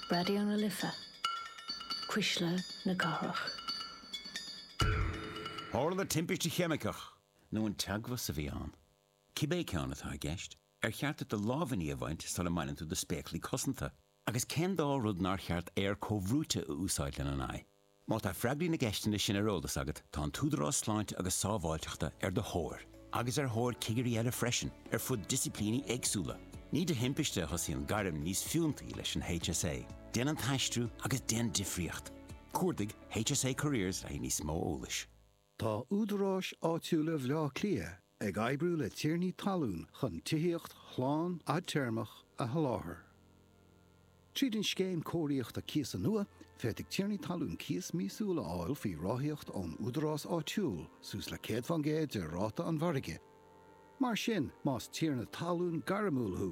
Raidió na Life, Cuisle na Cathrach. Tharla timpiste cheimiceach. Nó an teagmhas a bhí ann. Cibé ceann atá i gceist, ar cheart duit do lámhainní a bhaint sula mbaineann tú do spéaclaí cosanta? Agus cén dá rud nár cheart aer comhbhrúite a úsáid lena n-aghaidh? Má tá freagraí na gceisteanna sin ar eolas agat, tá an tÚdarás Sláinte agus Sábháilteachta ar do thóir, agus ar thóir cigirí eile freisin, ar fud disciplíní éagsúla. Ní de thimpiste a thosaíonn gairm níos fiúntaí leis an HSA, déan an t-aistriú agus déan difríocht! Cuardaigh HSA Careers le haghaidh níos mó eolais. Tá údaráis áitiúla Bhleá Cliath ag oibriú le tiarnaí talún chun tithíocht shlán fhadtéarmach a sholáthar. Tríd an scéim cóiríochta cíosa nua, féadfaidh tiarnaí talún cíos míosúil a fháil faoi ráthaíocht ón údarás áitiúil suas le 100 faoin gcéad de ráta an mhargaidh. Mar sin, más tiarna talún gairmiúil thú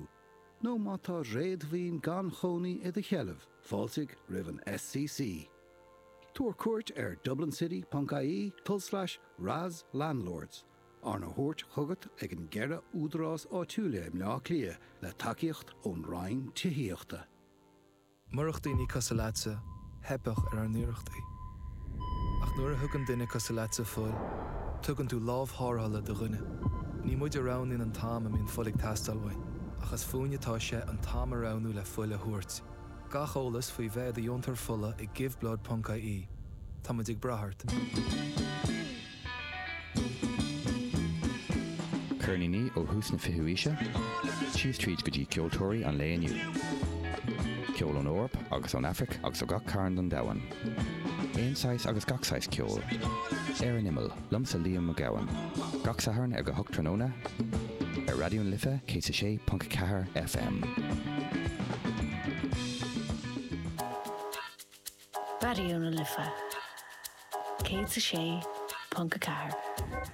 nó má tá réadmhaoin gan chónaí i do sheilbh, fáiltigh roimh an SCC. Tabhair cuairt ar dublincity.ie, tulslais, RAS Landlords, arna thabhairt chugat ag na ceithre údarás áitiúla i mBleá Cliath le tacaíocht ón Roinn Tithíochta. Murach daoine cosúil leatsa, theipfeadh ar ár n-iarrachtaí. Ach nuair a thugann duine cosúil leatsa fuil, tugann tú lámh tharrthála do dhuine. Ní muid a roghnaíonn an t-am a mbíonn fuil ag teastáil uainn, ach is fúinne atá sé an t-am a roghnú le fuil a thabhairt. Gach eolas faoi bheith i do dheontóir fola ag giveblood.ie. Táimid ag brath ort. Ceirníní ó thús na fichiú aoise síos tríd go dtí ceoltóirí an lae inniu. Ceol ón Eoraip agus ón Afraic agus ó gach cearn den domhan. Aon saghas agus gach saghas ceoil. Ar an imeall. Liomsa Liam Mac Gabhann. Gach Satharn ag a hocht tráthnóna ar Raidió na Life 106.4 FM. Raidió na Life 106.4.